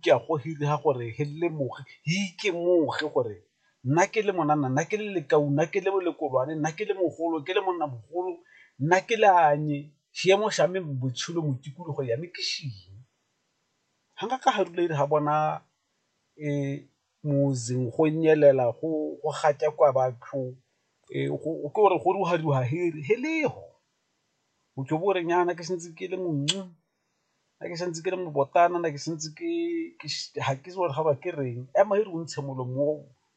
ke a go ga gore he lemoge he ikemoge gore nna ke le monana nna ke le lekau nna ke le lekolwane nna ke le mogolo ke le monna mogolo nna ke le anye seemo sa me botshelo mo tikologo ya me ke seng ga nka ka ga rula ere ga bona moseng go nyelela go gatakwa batho ke gore go ruga-ruga he lego o tlo bo o re nyana ke santse ke le . nna ke santse ke le mobotana nna ke santse ke ga ke itse gore ga ba ke reng, ema e re o ntshe molomo o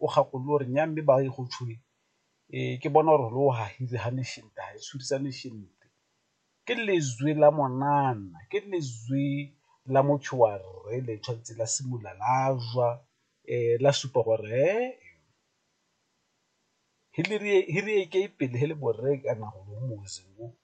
o gakolole o re nnya mme ba e go tshwenya ke bona gore lo gagile ga ne shente ga e tshwerisane shente, ke letswe la monana ke letswe la motho wa rre le tshwanetse la simolola la jwa la supa gore he-e-e pele he le borre kana golo .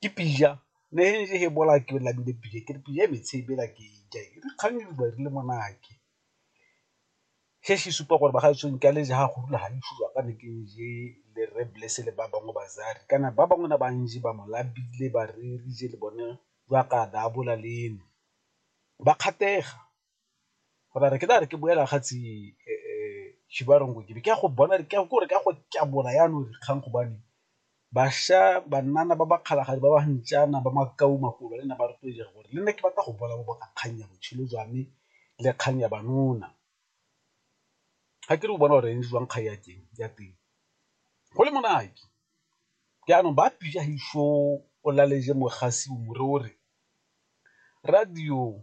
ke pizza ne e bola ke namile pizza ke re pizza e metshe ebela ke e ja e re kgang e re buang re le monate, se se supa gore ba gaetsho nka le ja go rula ga le sure ka ne ke je le rre Blessing le ba bangwe ba Zari kana ba bangwe ba ntse ba mo lapile ba re re je le bone jaaka a daabola le eno ba kgatlhega. go na re ke na re ke boela ga tsi Chibarongo ke be ke ya go bona ke gore ka go tlabola yana re kgang go bane basha banana ba ba kgalagadi ba ba ntšana ba makau makolo le nna ba rotloetsa gore le nna ke batla go bona ba bona kgang ya botshelo jwa me le kgang ya banona. Ga ke re o bona gore eng jwang kgang ya teng ya teng go le monate jaanong ba pija o laleje mogasi o more o re radio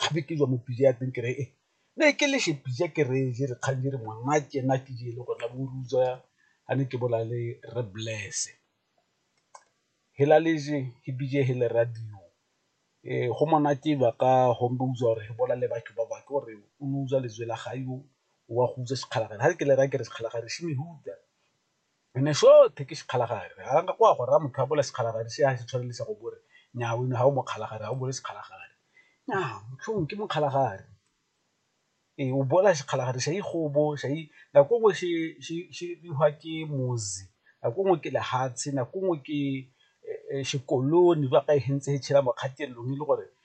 gape ke jwa mo pija ya teng kere e ne ke leshe pija ke re je re kgang je re ngwana ke ena ke je le gona bo ruja a ne ke bola le re bless-e hela le je he bije he le radio go monate ba ka home ba utlwa gore he bola le batho ba bangwe ke gore o utlwa lejwe la ga yo wa go utlwa sekgalakgale ha ke le raya ke re sekgalakgale . Re ne sothe ke sekgalagare. Ga nka go a go raya motho a bola sekgalagare se a se tshwanelisa go bore nnyaa wena ga o mokgalagare ga o bole sekgalagare nnyaa motlhong ke mokgalagare ee o bola sekgalagare sa ikgobo sa nako nngwe se bidiwa ke mozi nako nngwe ke lehatshe nako nngwe ke sekolone ba ka e hentse e tshela mo kgatelelong e le gore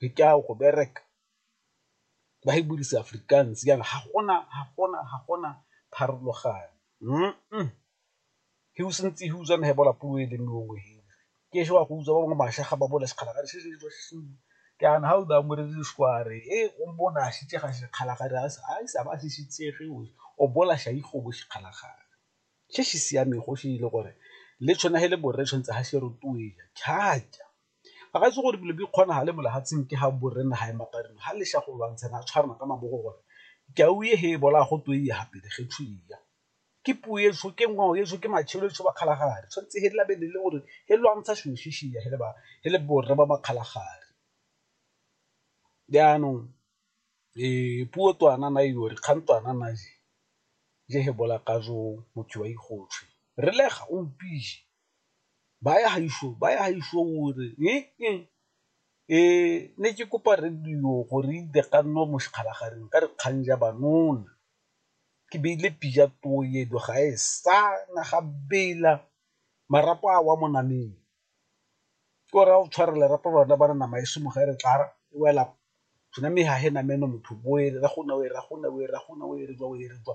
re ka ya go bereka ba e buisa Afrikaans jaana ga gona ga gona ga gona pharologano he o santse he utswa he bola puo e le nngwe he ke ešo wa go utswa ba bangwe mašwi a ga ba bole sekgala ga jaana ga o ba mo rele sešware he o mpona a šitše ga sekgala ga a se a ba se šitšege o o bola ša ikgobo sekgala gare se se siamego se e le gore le tshwana he le borre tshwantse ga se rotloetsa thata. Ga ga se gore dilo di kgonagale mo lefatsheng ke ga borre naga e mapareng ga le go lwantshana a tshwarana ka mabogo gore ke a o ye he e bolaya go twe ya gape ge tsho ya ke puo e so ke ngwao e so ke matshelo e so ba kgalagadi tshwanetse he labe le le gore he lwantsha selo se se ya he le ba he le borre ba makgalagadi. Jaanong puo twana na yo re kgang twana na je he bolaya ka jo motho wa ikgotswe re le ga o mpile. Baya gaišo, baya gaišo o re ne ke kopa radio gore e dire gannwe mo sekgalaganeng ka dikgang ja banona, ke beile pila toedo ga e sa na ga bela marapo a wa mo nameng ke o raya o tshware lerapo lona ba re nama e se mo ge re tla re e wela tsona mme ga e namele motho bo e re go ne o e re go ne o e re go ne o e re jwa o e re jwa